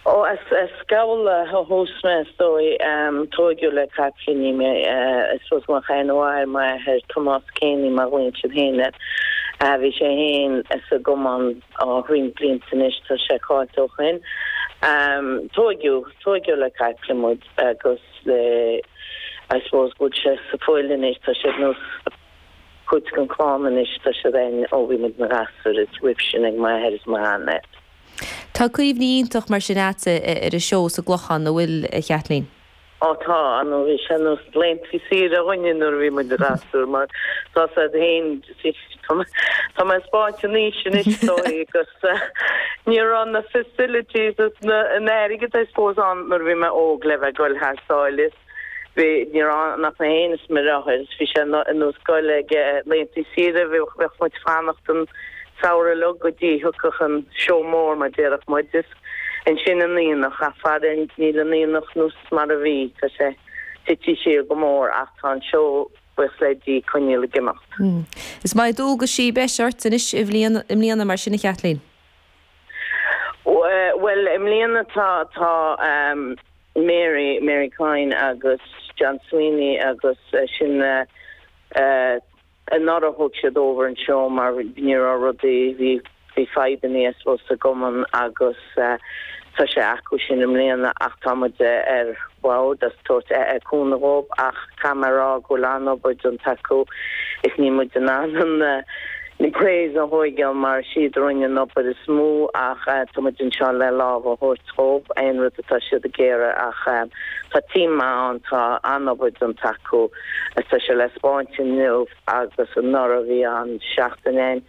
Ó, as Gabhla ó thús mé, is dóigh. Tóigeadh le capaillíní mé. I suppose mo sheanathair, m'athair, Tomás Keaney, mo mhuintir féine. Bhí sé fhéin sa gcumann thríd na blianta anois, tá sé caillte ó shoin. Tóigeadh, tóigeadh le caiple muid agus le, I suppose go bhfuil sé sa bhfuil anois, tá sé ag nós cuid den chlann anois. Tá siad ann ó bhí muid 'na ngasúir is roimh sin ag m'athair is mo shean-athair. Tá cuimhní iontach mar sin agatsa ar an seó sa gClochán, an bhfuil, a Chaitlín? Ó tá, nó bhí sé nós laethanta saoire dhúinne nuair a bhí muid 'na ngasúir mar tá a fhios a'd fhéin, tá mé ag spáint an aois anois is dóigh agus ní raibh na facilities is an airgead I suppose ann nuair a bhí mé óg le bheith ag goil thar sáile. Bhuel ní raibh ann ach na haontaí is mar atá agus bhí sé nós goil ag laethantaí saoire. Bheadh muid ag fanacht an Samhradh uilig go dtí thiocfadh an seó mór mar déarfadh muid is ansin an t-aonach ach faraor níl an t-aonach nós mar a bhí. Tá sé tití siar go mór ach tá an seó buíochas le Dia ag coinneáil ag imeacht. Is na dualgaisí a bheas ort anois i mbliana mar sin a Chaitlín? Bhuel i mbliana tá Mary, Mary Coyne agus John Sweeney agus sin anuraidh a thóg siad over anseo mar ní raibh rudaí, bhí fadhbannaí I suppose sa gcumann agus tá sé acu sin i mbliana ach tá muid ar bhord ag tabhairt cúnamh dhóibh ach caithfidh mé a rá go bhfuil an-obair déanta acu is níl muid in ann an praise a thóigeáil mar siad a rinne an obair is mó ach tá muid anseo le lámh a thabhairt dhóibh aon rud atá siad ag iarraidh ach tá team maith ann, tá an-obair déanta acu is tá sé le spáint inniu agus anuraidh. Bhí an tseachtain en,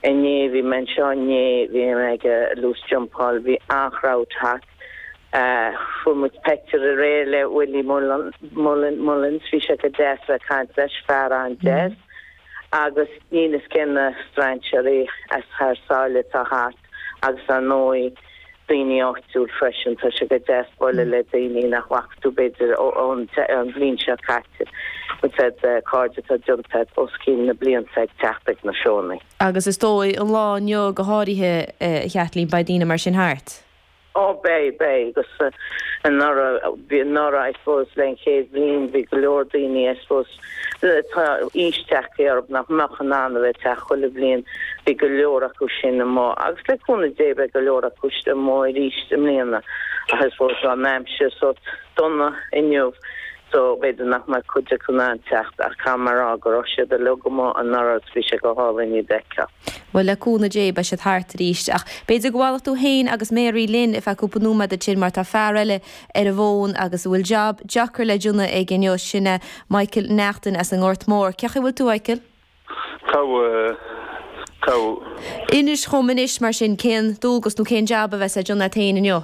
inné bhí mé anseo inné bhí mé ag loose jumpáil, bhí an-chrowd thart. Fuair muid peictiúr aréir le Willie Mullin, Mullins, bhí sé go deas ag caint leis, fear an-deas. agus níl fhios cé na strainséaraí as thar sáile atá thart agus ar ndóigh daoine áitiúil freisin. Tá sé go deas bualadh le daoine nach bhfaca tú b'fhéidir ón bhliain seo caite agus siad cairde atá deunta agat os cionn na blianta ag teacht ag na seónna. Agus is dóigh an lá inniu go háirithe a Chaitlín beidh daoine mar sin thart? Ó, beidh, beidh agus anuraidh, bhí anuraidh I suppose le an chéad bhliain bhí go leor daoine I suppose tá aois ag teacht orthub nach mbeadh in ann a bheith ag teacht chuile bhliain, bhí go leor acu sin amuigh agus le cúnamh Dé beidh go leor acu amuigh aríst i mbliana ach I suppose tá an aimsir sórt dona inniu so b'fhéidir nach mbeidh cuid acu in ann teacht ach caithfidh mé a rá go raibh siad uilig amuigh anuraidh agus bhí sé go hálainn iad a fheiceáil. Bhuel, le cúnamh Dé, beidh siad thart arís. Ach b'fhéidir go bhfanfadh tú fhéin agus Mary linn ar feadh cúpla nóiméad ansin mar tá fear eile ar an bhfón agus a bhfuil job deacair le déanamh aige inniu, sin é Michael Neachtain as an nGort Mór. Cén chaoi a bhfuil tú, a Mhichael? Inis dhom anois mar sin, cén dualgas nó cén job a bheas le déanamh agat fhéin inniu?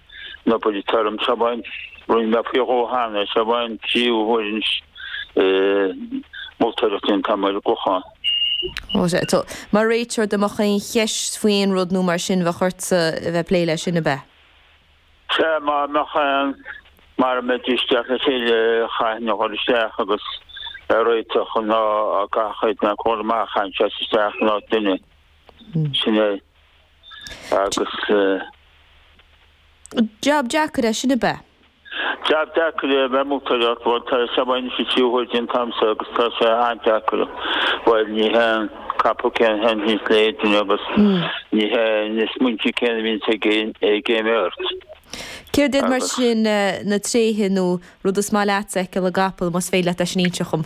na baill tirim sa bhfáinne. Rinne mé faoi dhó cheana sa bhfáinne, trí huaire ag moltóireacht an tSamáire Chlocháin. Ó sea, so mar réiteoir dá mbeadh aon cheist faoi aon rud nó mar sin bheadh ortsa a bheith plé leis sin, ab ea? Sea, dá mbeadh ann, mara mbeidís ag teacht le chéile, chaithfinn a ghoil isteach agus é a réiteach nó dá gcaithfeadh éinne a ghoil amach, chaithfinn seasamh isteach in áit duine. Sin é. agus. Jab deacair é sin ab ea? Jab deacair é a bheith ag moltóireacht, bhuel tá sa bhfáinne anois trí huaire déanta agamsa agus tá sé an-deacair. Bhuel ní hé an capall céanna a thaitníos le haon duine agus ní hé na smaointe céanna a bhíonn ag aon bheirt. Céard iad mar sin na tréithe nó rud is maith leatsa fheiceáil i gcapall, más féidir leat é sin a inse dhom?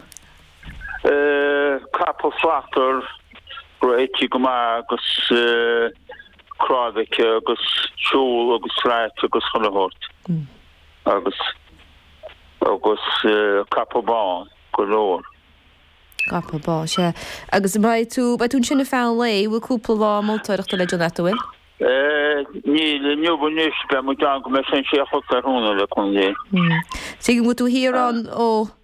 Capall slachtmhar réitithe go maith agus cnámh aici agus siúl agus srait agus chun a thabhairt agus agus capall bán go leor. Capall bán, sea. Agus beidh tú, beidh tú ansin ar feadh an lae, bhfuil cúpla lá moltóireachta le déanamh agat, bhfuil? Níl inniu anois beidh muid ann go mbeidh sé ina sé a chlog tráthnóna le cúnamh Dé. Tuigim go bhfuil tú thiar ann ó